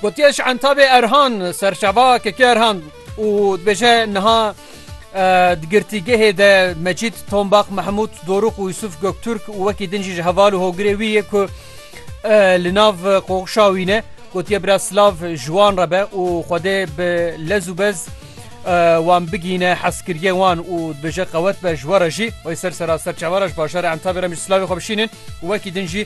Gotiye ji Entabê Erhan serçava Kekê Erhan û dibêje niha di girtîgehê de Mecîd Tombax Mehmûd Dorûx û Yusuf Gökturk û wekî din jî ji heval û hogirê wî yê ku li nav qoxişa wî ne gotiye bira silav ji wan re be û xwedê bi lez û bez wan bigîne heskiriye wan û dibêje qewet be ji we re jî wê ser sera serçava re ji bajarê Entabê re min jî silavê xwe bişînin û wekî din jî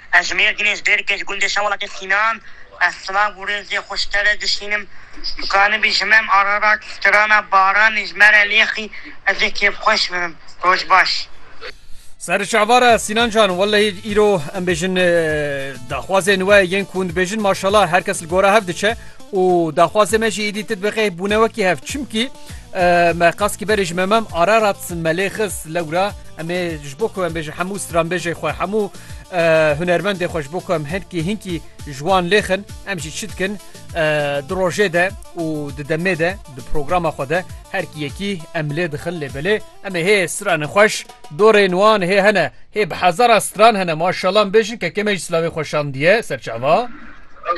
Ez Mêrdîn ê, ji Bêrikê, ji gundê Şewelatê Sînan. Ez silav û rêzê xwe ji te re dişînim. Dikanibî ji me Ararat, strana Baranê ji me re lêxî, ez ê kêfxweş bibim. Roj baş. Ser çavara Sînan can, wellehî îro em bêjin daxwazên we yên ku hûn dibêjin maşallah her kes li gora hev diçe û daxwazê me jî êdî ti dibe qeh bûne wekî hev. Çimkî me qas kî berê ji me mem Ararat me lê xist lewra em ê ji bo ku em bêjin hemû stranbêjê xwe, hemû Hunermendê xwe ji bo ku em hinkî hinkî ji wan lêxin em jî çi dikin di rojê de û di demê de di programa xwe de herkî yekî em lê dixin lê belê em ê hê stranên xweş dorên wan hê hene hê bi hezara stran hene maşallah em bêjin kekê me jî silavê xwe şandiye ser çava.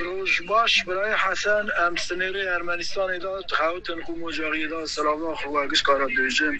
Roj baş birayê Hesen em sinêrê Ermenistanê de dixewitin ku mocariyê de silava xwe giş kara bêjin.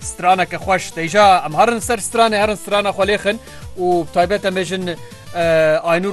Straneke xweş teyja em herin ser stranê herin strana xwe lêxin û taybet em bêjin Aynur